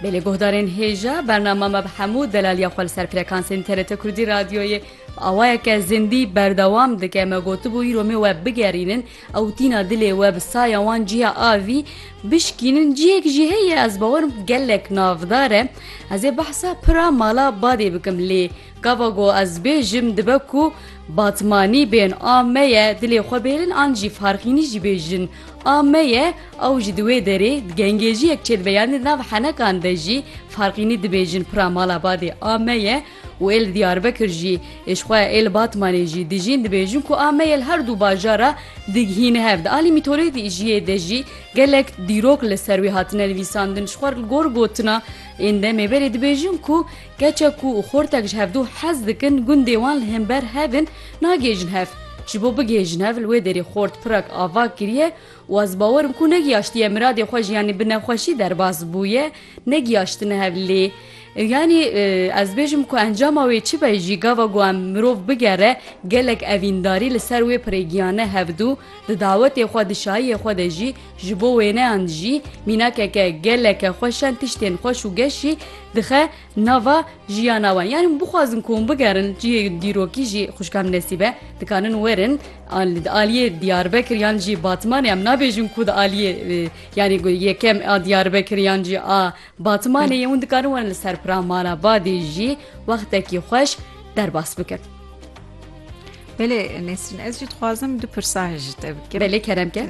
Belê guhdarên hêja, bernama me bi hemû delaliya xwe li ser frekansên TRT Kurdî radyoyê bi awayeke zindî berdewam dike. Me gotibû îro me we bigerînin ew tîna dilê we bi saya wan cîya avî bişkînin cîyek jî heye ez bawerim gelek navdar e. Ez ê behsa pira mala badê bikim lê gava ku ez bêjim dibe ku batmanî bên a me ye dilê xwe bêrin an jî farxînî jî bêjin a me ye Ew ji di wê derê di gengêjiyek çêdibe yanî di nav henekan de jî Farqînî dibêjin pira mala badê a me ye û ê li Diyarbekir jî ê ji xwe ya ê li Batmanê jî dijîn dibêjin ku a me ye li her du bajara digihîne hev. Di alî mîtolojiyê de jî gelek dîrok li ser wê hatine nivîsandin ji xwe li gor gotina ên demê berê dibêjin ku keçek ku xortek ji hevdu hez dikin gundê wan li hember hev in nagêjin hev ji bo bigêjin hev li wê derê xort pirek ava kiriye Û ez bawer im ku negiyaştiye miradê xwe jî yanî bi nexweşî derbas bûye, negiyaştine hev lê yanî ez bêjim ku encama wê çi be jî gava ku em mirov bigere gelek evîndarî li ser wê pirêgiyane hevdû di dawetê xwe di şayiyê xwe de jî ji bo wêneyan jî mînakeke geleke xweşen tiştên xweş û geşî dixe nava jiyana wan yanî hûn bixwazin ku hûn bigerin cihê dîrokî jî xwişka min Nesîbe ye dikarin werin al- di aliyê Diyarbekir yan jî Batmanê em nabêjin ku di aliyê e, yanî gu- yekem a Diyarbekir yan jî a Batmanê ye hûn dikarin werin li ser pira mala badê jî wextekî xweş derbas bikin. Belê Nesrin ez jî dixwazim du pirsa ji te bikim. Belê kerem ke.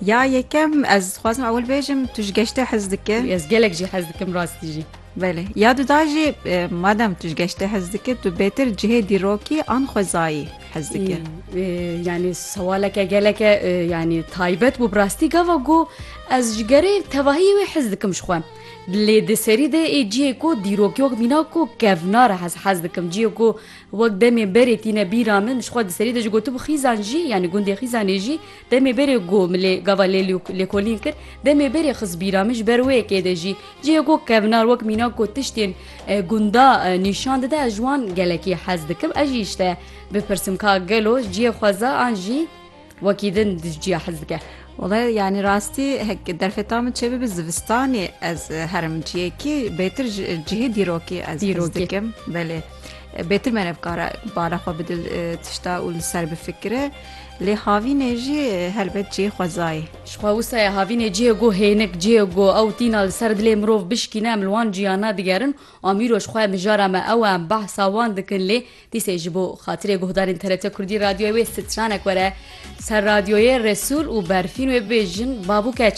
Ya yekem ez dixwazim ewil bêjim tu ji geştê hez dike. Ez gelek jî hez dikim rastî jî. Belê ya du da jî madem tu ji geştê hez dike tu bêtir cihê dîrokî an xwezayî hez dike. Yanî sewaleke geleke yanî taybet bû rastî gava got ez ji gerê tevahî wê hez dikim ji xwe. Lê di serî de ê cihê ku dîrokî wek mîna ku kevnare hez hez dikim cihê ku Wek demê berê tîne bîra min, ji xwe di serî de jî gotibû xîzan jî, yanî gundê Xîzanê jî demê berê go min lê gava lê lêkolîn kir, demê berê xist bîra min ji ber wê yekê de jî cihê ku kevnar wek mînak ku tiştên gunda nîşan dide ez ji wan gelekî hez dikim, ez jî ji te bipirsim ka gelo cihê xweza an jî Wekî din dijîya hez dike. Wele yanî rastî heke derfeta min çêbibe zivistanê ez herim ciyekî bêtir cihê dîrokî ez dîrok dikim belê. Bêtir me nevkara bala xwe bi dil tişta û li ser bifikire lê havînê jî helbet cihê xwezayê. Ji xwe wisaya havînê cihê ku hênik cihê ku ew tîna li ser dilê mirov bişkîne em li wan ciya nedigerin. Amîro ji xwe mijara me ew e em behsa wan dikin lê Dîsê ji bo xatirê guhdarên TRT Kurdî radyoyê wê stranek were ser radyoyê Resûl û berfîn wê bibêjin Bab û keç.